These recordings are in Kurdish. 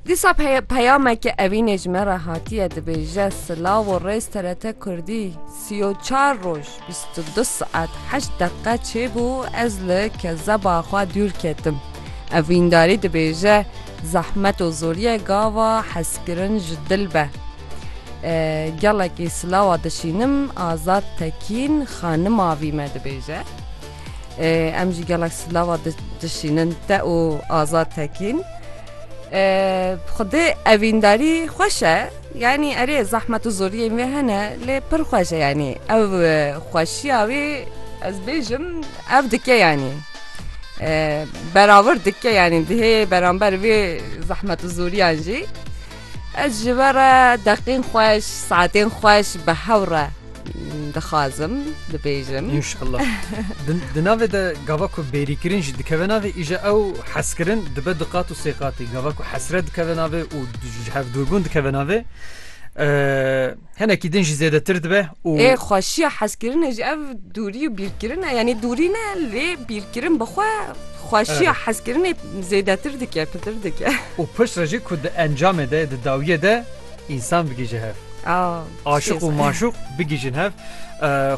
Dîsa peyameke evînê ji me re hatiye dibêje silav û rêz TRT Kurdî sî û çar roj bîst û du saet heşt deqe çêbû ez li kezeba xwe dûr ketim. Evîndarî dibêje zehmet û zorîyê gava hezkirin ji dil be. Gelekî silawa dişînim Azad Tekîn xanima vî me dibêje. Em ji gelek silava dişînin te û Azad Tekîn. Xwedê evîndarî xweş e yanî erê zehmet û zoriyên wê hene lê pir xweş e yanî ew xweşiya wê ez bêjim ev dike yanî beravir dike yanî dihê beramber wê zehmet û zoriyan jî. Ez ji we re deqên xweş, saetên xweş bi hev re dixwazim bibêjim. Înşallah. Di navê de gava ku bêrîkirin jî dikeve navê îje ew hezkirin dibe du qat û sê qatî. Gava ku hesret dikeve navê û ji hev dûrbûn dikeve navê. Hinekî din jî zêdetir dibe û. Ê xweşiya hezkirinê jî ev dûrî û bîrkirin e. Yanî dûrî ne lê bîrkirin bi xwe xweşiya hezkirinê zêdetir dike, pitir dike. Û pişt re jî ku di encamê de, di dawiyê de însan bigihîje hev. Aşiq û maşûq bigihîjin hev.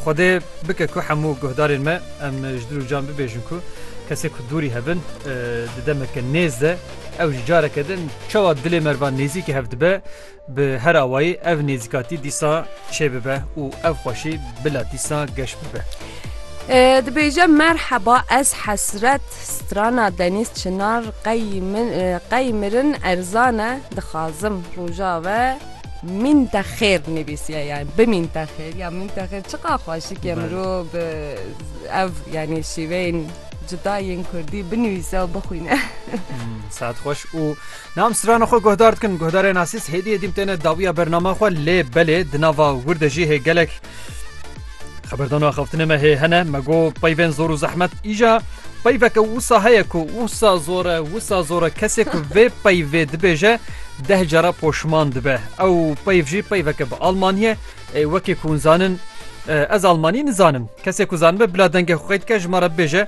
Xwedê bike ku hemû guhdarên me em ji dil û can bibêjin ku kesên ku dûrî hev in di demeke nêz de ew jî careke din çawa dilê me re ba nêzîkî hev dibe, Bi her awayî ev nêzîkatî dîsa çêbibe û ev xweşî bila dîsa geş bibe. Dibêje merheba ez hesret strana Deniz Çınar qey mirin erzane dixazim roja ve min te xêr nivîsiye yani bimîn te xêr ya min te xêr çiqa xweşikê mirov bi ev yani şîveyên cudayên kurdî binivîse û bixwîne. Saet xweş û Nam strana xwe guhdar dikin. Guhdarê nasîs hêdî hêdîm têne dawiya bernama xwe lê belê di nava wir de jî hê gelek xeberdan û axaftinê me hê hene me got peyvên zor û zehmet îja peyveke wisa heye ku wisa zor e wisa zor e kesê ku vê peyvê dibêje deh cara poşman dibe ew peyv jî peyveke bi almaniye ê wekê ku zanin Ez Almanî nizanim kesê ku zanibe bila dengê xwe dike ji me re bêje